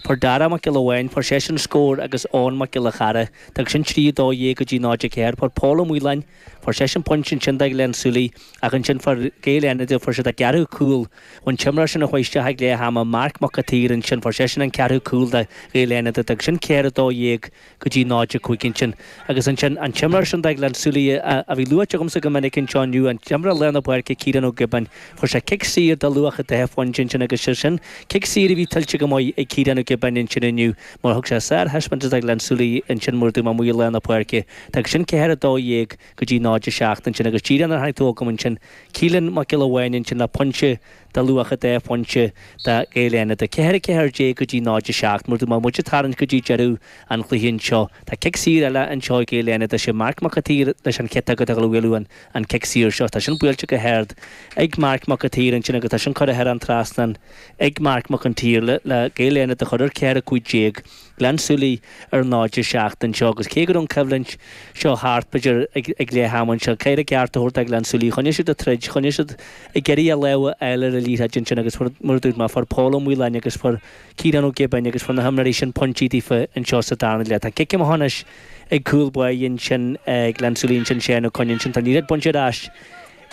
Fuair Dara Mac Giolla Bháin, fuair seisean scór agus Eoghan Mac Giolla Chearra, d'fhág sin trí, a dó dhéag go dtí náid a ceathair. Fuair Pól Ó Maoláin, fuair seisean pointe, ansin do Ghleann Súilí ach ansin fuair Gaeil Fhánada, fuair siad a gceathrú cúl an t-imreoir sin a chuaigh isteach ag leath ama, Marc Mac a tSaoir, ansin fuair seisean an ceathrú cúl do Ghaeil Fhánada, d'fhág sin ceathair, a dó dhéag. go dtí 0, 5 ansin agus ansin an t-imreoir sin do Ghleann Súilí a bhí luaite agamsa go minic anseo inniu, an t-imreoir lár na páirce Ciarán Ó Giobáin, fuair sé cic saor de luach 2 phointe ansin agus sé sin cic saor a bhí tuillte go maith ag Ciarán Ó Giobáin ansin inniu mar thug sé sárthaispeántas do Ghleann Súilí ansin mar a dúirt mé amuigh i lár na páirce d'fhág sin 4, 12 go dtí 0, 7 ansin agus díreach nuair a tháinig tú chugam ansin Keelan Mac Giolla Bháin ansin le pointe de luach 2 phointe do Ghaeil Fhánada 4, 14 go dtí 0, 7. Mar a dúirt mé, muid ag tarraingt go dtí deireadh an chluiche anseo, tá cic saor eile anseo ag Gaeil Fhánada, sé Marc Mac a tSaoir leis an chic atá ag dul a bhualadh an cic saor seo. Tá sin buailte go hard ag Marc Mac a tSaoir ansin agus tá sin curtha thar an trasnán ag Marc Mac an tSaoir le Gaeil Fhánada a chur ar 4, 15. Gleann Súilí ar náid a seacht anseo agus cé go raibh an choimhlint seo thart, b'fhéidir, ag leath ama anseo, caithfear a gceart a thabhairt do Ghleann Súilí, choinnigh siad ag troid, choinnigh siad ag iarraidh a lámh a fháil ar an liathróid ansin agus fuair, mar a dúirt mé, fuair Pól Ó Maoláin agus fuair Ciarán Ó Giobáin agus fuair na himreoirí sin pointí daofa anseo sa darna leath. Tá cic amach anois ag cúl báire ansin Ghleann Súilí ansin, Séan Ó Coinn ansin, tá an liathróid bainte ar ais,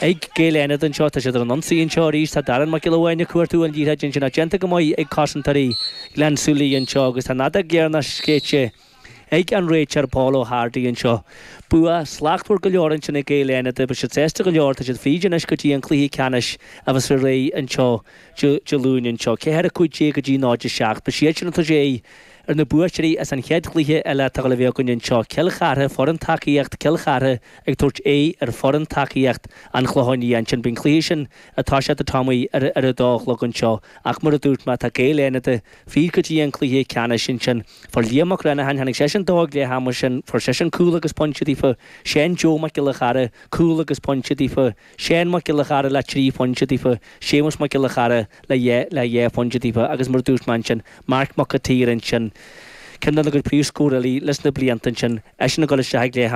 Ag Gaeil Fhánada anseo tá siad ar an ionsaí anseo arís, tá Darren Mac Giolla Bháin ag cuartú an liathróid ansin ach déanta go maith ag cosantóirí Ghleann Súilí anseo agus tá an fheadóg dheireanach séidte ag an réiteoir Pól Ó hArdaigh anseo. Bua slachtmhar go leor ansin ag Gaeil Fhánada, beidh siad sásta go leor, tá siad fríd anois go dtí an cluiche ceannais a bheas ar aghaidh anseo Dé Luain anseo. 4-15 go dtí 0-7. Beidh siad ansin ag tabhairt aghaidh Ar na buaiteoirí as an chéad chluiche eile atá ag dul a bheith againn anseo, Cill Chartha, foireann tacaíocht, Cill Chartha ag tabhairt aghaidh ar foireann tacaíocht, An Chlocháin Liath. Ansin beidh an cluiche sin ag toiseacht, Tommy, ar ar a dó a chlog anseo. Ach mar a dúirt mé, tá Gaeil Fhánada fríd go dtí an cluiche ceannais. Ansin fuair Liam Mag Reannacháin, tháinig seisean dó ag leath ama, sin, fuair seisean cúl agus pointe daofa, Seán Joe Mac Giolla Chearra, cúl agus pointe daofa, Séan Mac Giolla Chearra le 3 phointe daofa, Séamus Mac Giolla Chearra le dhá le dhá phointe daofa agus mar a dúirt mé ansin, Marc Mac a tSaoir ansin, ceann de na gcuid príomhscórálaí leis na blianta ansin, eisean ag dul isteach ag leath ama.